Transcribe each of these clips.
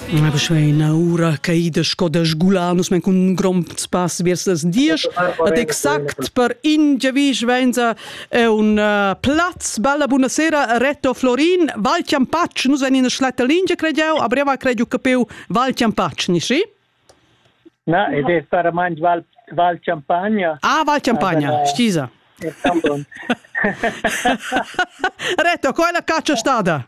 I m'ha ina ura caida sco da sgular nus men cun un grond spass vers las diesch ad exact per in giavisch venza è un uh, plaz bella buonasera Retto Florin Val Chiampacci nus en ina schletta lingia credeau a breva credeau capiu Val Chiampacci ni sì? Na, ed è stata mangi Val, Val Champagna. Ah, Val Champagna, stisa. Retto, qual è la caccia stata?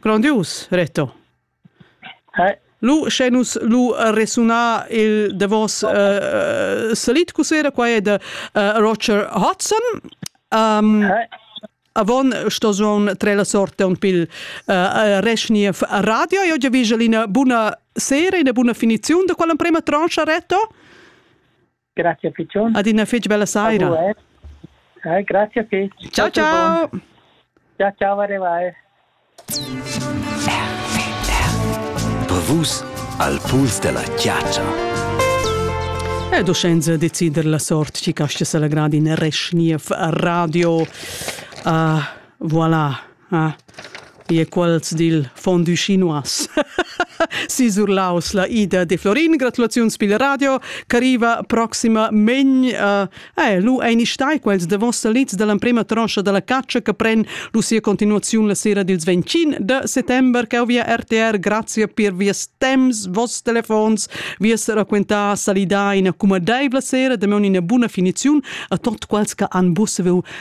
Grandius, Reto. Hey. Lu, sche nus lu resuna il davos uh, salit cusera, qua è de uh, Roger Hudson. Um, hey. Avon sto zon tre la sorte un pil uh, resniev radio. Io già viso una buna sera, una buna finizione de quella prima tranche, Reto. Grazie Piccion. Adina fetg bella saira. Eh, grazie fetg. Ciao ciao. Ciao ciao Vare vai. Per vus al puls della chiaccia. E do senza decider la sort ci cascia la gradi in Reschniev Radio. Uh, voilà. Ah, ie quels dil fondü chinois. Sisur Laus, la ida de Florin. Gratulaziuns pil radio, ch'arriva proxima megn. Uh, eh, lu ein stai quels de vossa lits dall'emprema tronscha dalla caccia che pren lu sia continuaziun la sera dils 25 de settember, che via RTR, grazie per vies temps, vos telefons, vies raquentar salidai in accumadeivla sera, de meun ina buna finiziun a tot quels che han busseveu